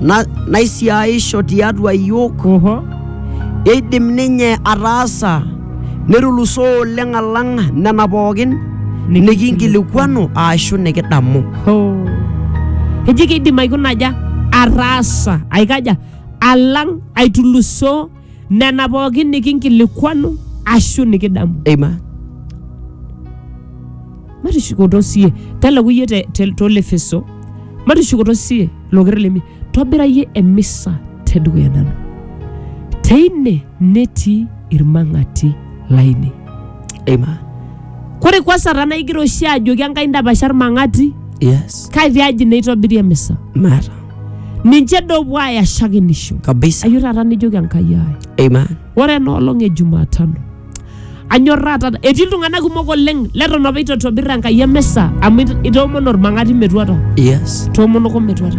na- naisiaisho tiatua iyiook Oho. eidim ninye ataasa netulusoo oleng alang nena pookin nikinkilikuanu aashu nikidamu Ho. Eji kidim aikuna aja ataasa aikaja alang aitulusoo nena pookin nikinkilikuanu ashu nikidamu Amen. matushukoto sie teleku iyie te- te- tolefeso matushukoto sie loker lemi tobira iyie emisa tedukuya nanu teine netii irmang'ati lainei Amen. kore kwa sara naigira oshi ajoki enkai ndapasha irmang'ati Yes. kai tiaji neitobiri emisa Mara. ninche dopuo aaya shakenisho Kabisa. ayio taata nijoki enkai ai Amen. ore ena olong e jumatano anyorraa taata etii iltung'anak kumok oleng leton apa itotobirra enkai emisa amu it- itoomono ormang'ati metuata Yes. toomonoko metuata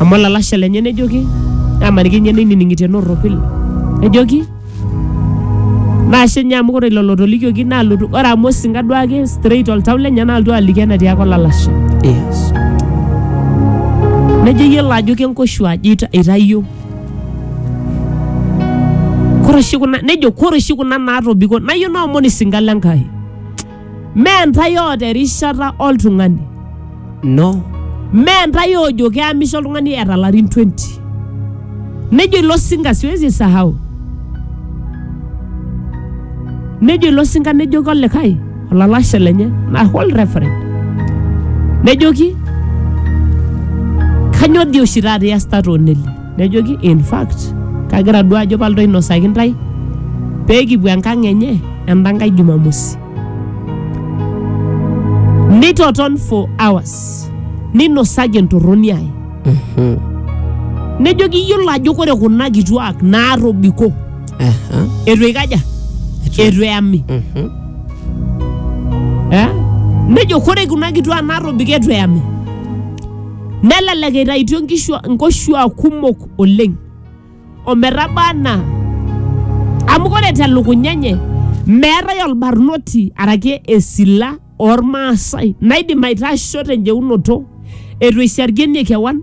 Amu olalashe lenye nejoki, amaniki ninye neinining'itie norropil. Nejoki, naashe ninye amu ore lelo otolikioki naalotu, ore amu osinka duake straight oltau lenye naalotu aliki enatiaka olalashe. Yes. Nejo iyiolo ajo kenkoshu aji ita- itayio. Kore oshi kuna, nejo kore oshi kuna naatobiko nayieu naomon isinka le Nkai. Mee ntae oota erishata oltung'ani. No. Mee ntae oojo keamisho oltung'ani eeta larin 20. Nejo ilo sinka siwezi sahau. Nejo ilo sinka nejoki olikae olalashe lenye na hold referent. Nejoki kanyoo dii oshi taata iasita too neli? Nejoki, In fact, kagira duo ajo palotu ainosaki intae pee kipuo enkang enye enda nkae Jumamosi. Nitoton for hours ninosaki entorroni ai. Nejoki iyiolo ajo kore kuna kituak naatobiko Aha. eitu eikaja eitu eyami Mhm. eh? nejo kore kuna kituak naatobiko eitu eyami Nelelek eitaitio nkishua nkoshuaa kumok oleng ometaba anaa amu ore telukunya enye meetae olbarnoti araki esila ormaasai naidim aitasho tenjeunoto eitu eisharkienie kewan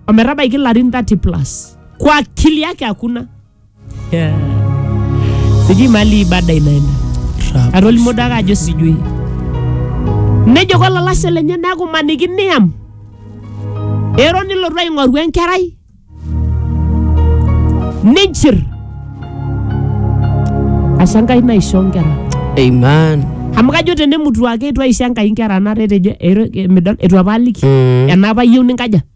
ometabaiki ilarin 30 plus kwa akili yake hakuna. Yeah. sijui mali ibada inaenda Rap. atolimuo dake ajo sijui nejo kolalashe lenye neeku maniki niam ero nilotu aing'oru enkerai ninchir asha nkai naisho nkera Amen. amu kajo tenemutu ake itu aisho enkai nkera naata etejo ero- midol itu apa aliki Mm. ena apa iyieu ninkaja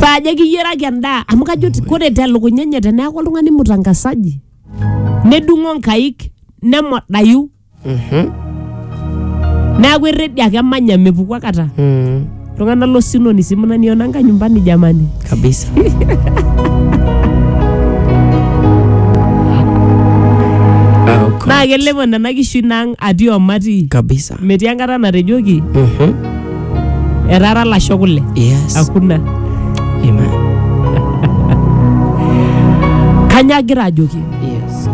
saa ajo kiyiaraki endaa amu kajo ti- kore telukunya enye teneeku oltung'ani mutangasaji nedung'o nkaik nemodayu neeku erredi ake emanya mepuku akata Mm, iltung'anak losinoni si mnaniona nka nyumbani jamani kabisa Ah, okay. naa kelepo nena kishu nang atii omati kabisa metii enkata natejoki Mhm. etaara lasho kule Yes. hakuna Amen. kanya agira ajoki Yes.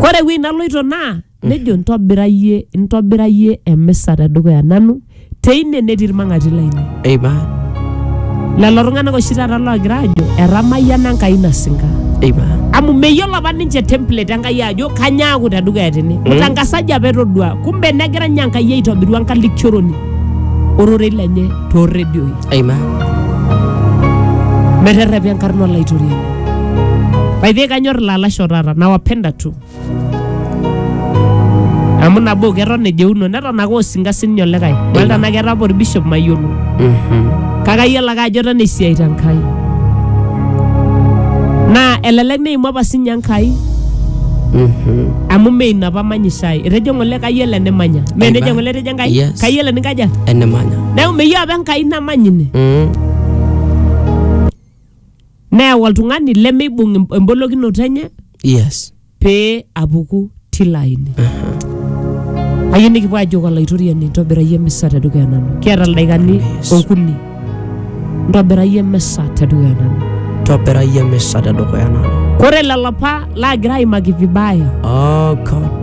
kore ewueji naloito naa nejo ntobirayie ntobirayie emisa tedukuya nanu teine netii ilmang'ati lainei Amen. lelo tung'anak oshi taata loogira aajo etamayiana enkai nasinka Amen. amu meyiolo apa ninche template enkai ajo kanyaaku tedukuya tene mutangasaji apa etodua kumbe negira ninye enkai aitobiru enkalikioroni ororei lenye toorredioi Amen. meterrepi enkarna olaitoriani by the way kanyor ilalashoo taata nawapenda tu amu nabo keton ejeuno neton ake osinka sininye olikae dolta anaa keeta apa orbishop mayiolo kake ayiolo ake ajo eton esiai te Nkai naa elelek neimu apa sinye Enkai amu mee ina apa manyisho ai etejo ng'ole kayiolo enimanya mee Aiba. nejo ng'ole etejo Enkai Yes. kayiolo eninkaja enemanya neeku meyieu apa Enkai namany ine Mm. neyau oltung'ani lemeibung em- embolokinoto enye yes pee apuku tilo aini ayieu nikipuo ajoki olaitoriani ntobirayie emisa tedukuya nanu kiata ildaikani Yes. okuni ntobirayie emisa tedukuya nanu tobirayie emisa tedukuya nanu kore lelo apa laagira aimaki vibaya oh god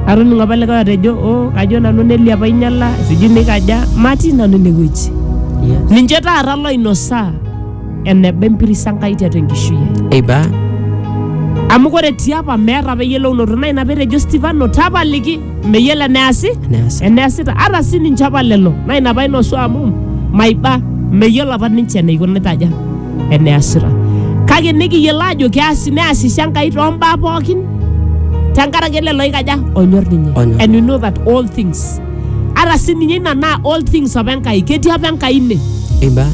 atoning'o apa likae otejo o kajo nanu nelia apa ainyala sijui nikaja matii nanu inewueji yes ninche taata loinosaa eneba empiris Enkai tiatua enkishui ai. Eiba. Amu ore tiapa meeta apa eyiolounoto naa ina petejo Stefano tapaliki meyiolo eneasi Neas. eneasita ata sii ninche apa lelo naa ina painosu amu maiba meyiolo apa ninche eneikunita aja eneasita kake nikiyiolo ajo keasi neasisho Enkai tombaa pookin tenkaraki lelo oikaja onyor ninye Onyor. and you know that all things ara sininye ina naa all things apa enkai ketii apa enkai ine Amen.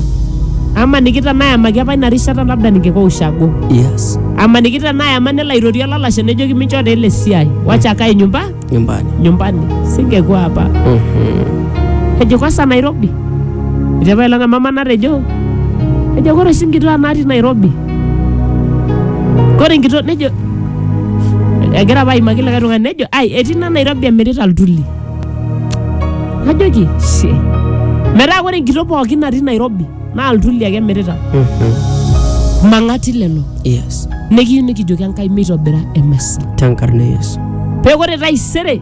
amaniki tenaa ayamaki apa ina rishata labda ningeko ushago Yes. amaniki tenaa ayama nelo airorie olalashe nejoki mincho taa ele siai wacha akae nyumba Nyumbani. nyumbani singekuwa hapa Mhm. ejo kwanza nairobi etepa ilanga mama natejo ejo kore oshi nkituaa natii nairobi Kore enkitok nejo egira apa aimaki likae tung'ani nejo ai etii ina Nairobi emirita iltuli. Najoki she metaa kore enkitok pookin natii Nairobi naa iltuli ake emirita. Mang'ati lelo Yes. nikiyieu nikijoki Enkai meitobira emesa. Tenkarna e Yesu. Pee kore taisere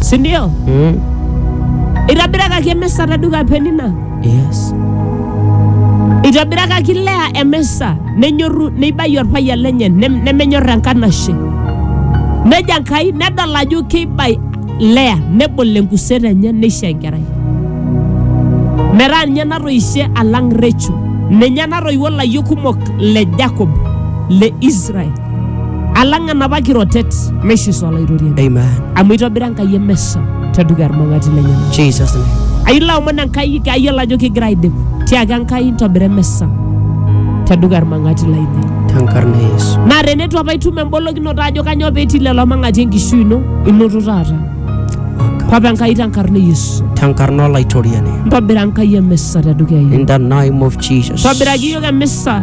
si ndio? Mm. Itobirakaki emisa te duka Penina, Yes. itobirakaki Lea emisa, nenyorru neibayu orpayian lenye nem- nemenyor enkanashe. Nejo Enkai nedol ajo keibai Lea nebol enkuset enye neisho enkerai. Metaa ninye natoishe alang Recho, ninye natoiwuo layiok kumok le Jacob le Israel. alang enapa kirotet meishiso olaitoriani Amen. amu eitobira enkai emesa tedukuya irmang'ati lenyena Jesus' name. ailo omon enkai kayiolo ajo kigira aidip tiaki enkai ntobira emesa tedukuya irmang'ati lainei Tenkarna e Yesu. naa teneitu apa itum embolokinoto ajo kanyoo petii lelo mang'ati enkishui ino inoto taata Waka. papa enkai tenkarna e yesu Tenkarna olaitoriani. ntobira enkai emisa tedukuya ino In the name of Jesus. tobiraki iyiok emisa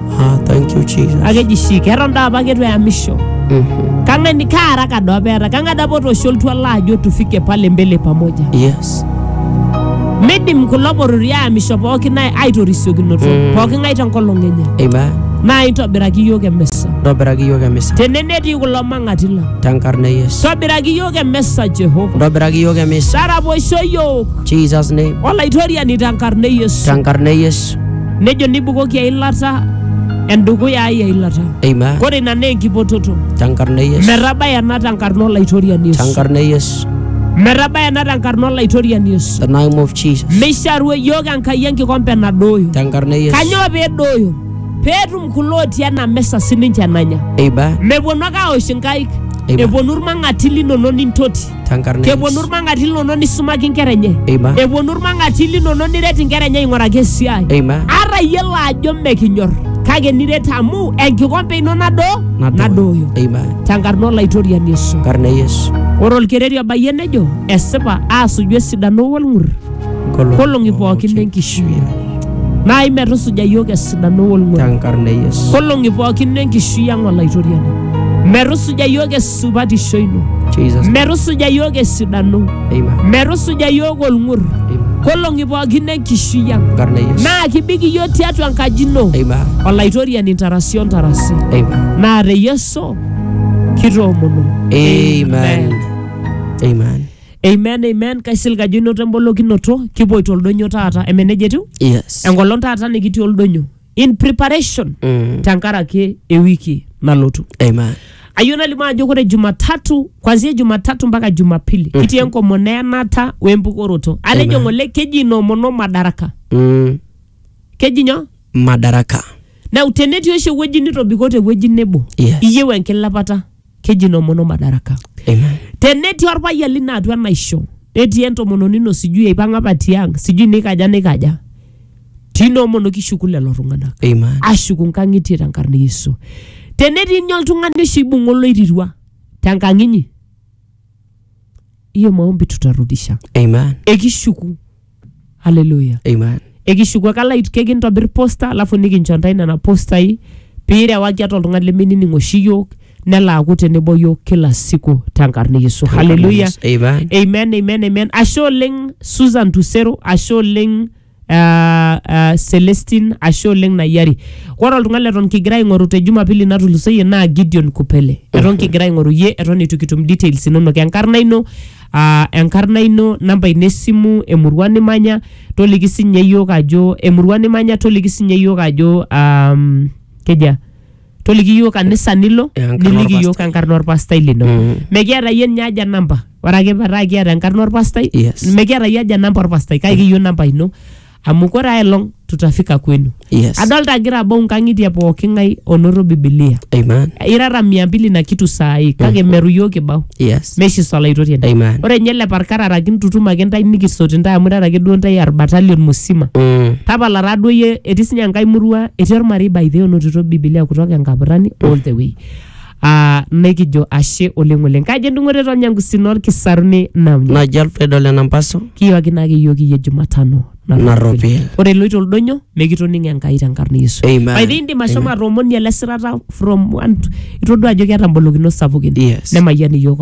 Ah, thank you, Jesus. akeji shi keton daa apa ketu eyamisho Mhm. kang'ani kaara kado apa eeta kang'ae dapa otoosho oltuala ajo tufike pale mbele pamoja Yes. midim kulo porori aamisho pookin ai- aitorisiokinoto Mm. pooki ng'ae tenkolong enye Amen. naa intobiraki iyiook emesa Ntobiraki iyiook emisa tene netii kulo mang'ati lang tenkarna e Yesu. tobiraki iyiook emesa jehova Ntobiraki iyiook emisa. taraposho iyiook Jesus name. olaitoriani tenkarna e yesu Tenkarna e Yesu. nejo nibukoki eilata endukuya ai eilata Amen. kore ina naa enkipototo Tenkarna e Yesu. metabaya ena tenkarna olaitoriani yesu Tenkarna e Yesu. metabaya ena tenkarna olaitoriani yesu The name of Jesus. meisharu yiok enkai enkikompe nadooyo Tenkarna e Yesu. kanyoo peedooyo peetum kulo otii ena mesa sininche enanya Amen. mepuonu ake aosh inkaik Amen. epuonu irmang'ati linono nintoti tenkarna e keponu Yesu. irmang'ati linono nisumaki inkera enye Amen. eponu irmang'ati linono niret inkera enye aing'uraki esiai Amen. ata iyiolo ajo mekinyor kake niret amu enkikompe ino nado nadooyo Amen. tenkarna olaitoriani Yesu Tenkarna e Yesu. ore olkereri obayie nejo esipa aasuju esidano wolng'ur nkolong'i pookin enkishui ang. Naai metusuja iyiook esidano olng'oru tenkarna e Yesu. nkolong'i pookin enkishui ang olaitoriani metusuja iyiook esupatisho ino Jesus. metusuja iyiook esidano Amen. metusuja iyiook olng'ur Amen. nkolong'i pookin enkishui ang Tenkarna e Yesu. naa kibik iyiook tiatua enkaji ino Amen. olaitoriani ntarasi o ntarasi Amen. naa te yesu kitoomono Amen. Amen. Amen, amen. Kaisilig ajo inoto embolokinoto. Kipoito oldonyo taata. Eme nejia etiu? Yes. Enkolong taata nikitii oldonyo. In preparation Mm. tenkaraki ewiki nalotu. Amen. Ayieu nalimu ajo ore Jumatatu, kwanzia Jumatatu mpaka Jumapili, kitii enkomono eyanata wempukoroto. Atejo ng'ole keji inoomono madaraka. Mm. Keji nyoo? Madaraka. Nau tenetii oshi ewueji nitobiko tewueji nebo, Yes. iyieu enkilepata. keji nomono madaraka Amen. tenetii orpayian lino atua enaisho netii entomononi ino sijui eipang'a apa tiang sijui nikaja nikaja tinoomono kishuku lelo tung'anak Amen. ashuku nkang'itie tenkarna e yesu tenetii inye oltung'ani oshi ibung'a oloirirua tenkang inyi hiyo maombi tutarudisha Amen. ekishuku haleluya Amen. ekishuku ake alait kekintobir posta alafu nikincho ntae nena postai piirewaki atua oltung'ani leminining oshi yiok nelo aaku tenebo yiok kila siku tenkarna e yesu haleluya Amen. amen amen amen ashe oleng susan tusero ashe oleng uh, uh, celestin ashe oleng nayiari ore oltung'ani leton kigira aing'oru te jumapili natulusoyie naa gideon kupele eton kigira aing'oru yie eton eitu kitum details inonok enkarna ino aa enkarna ino namba ino esimu emurua nimanya toliki sinye yiok ajo emurua nimanya toliki sinye yiok ajo um, keja toliki yiok kanisa nilo Enkarna niliki orpastai. yiok enkarna orpastai lino Mm. mekiata yie ninye aja namba ore ake pataa kiata enkarna orpastai Yes. mekiata yie aja namba orpastai kake kiyieu namba ino amu kore aelong tutafika kwenu Yes. adolta agira abau nkang'itie pooki ng'ai onoto bibilia Amen. irara mia mbili na kitu saai kake meru yiok kibau Yes. meshi solaitorien Amen. ore nye ele parkarara kintutum ake ntae nikisoti ntae amu irara ake duo ntae arbatalion musima Mm. tapala taa duo yie etii sinye enkae murua etii ormarei by the way onotito bibilia kutoka enkapurrani all the way aa nekijo ashe oleng oleng kaji endung'oto eton nyangusin orkisaruni namnyo naji alfredo lenampaso kiyooki naake iyiook iyie jumatano Narropil. ore iloito oldonyo mikitoning enkai tenkarna e yesu Amen. By the way, indim ashomo atoomonie ele sirata from one to- itodua ajo keeta mbolokinot sapukin Yes. nemayian iyiook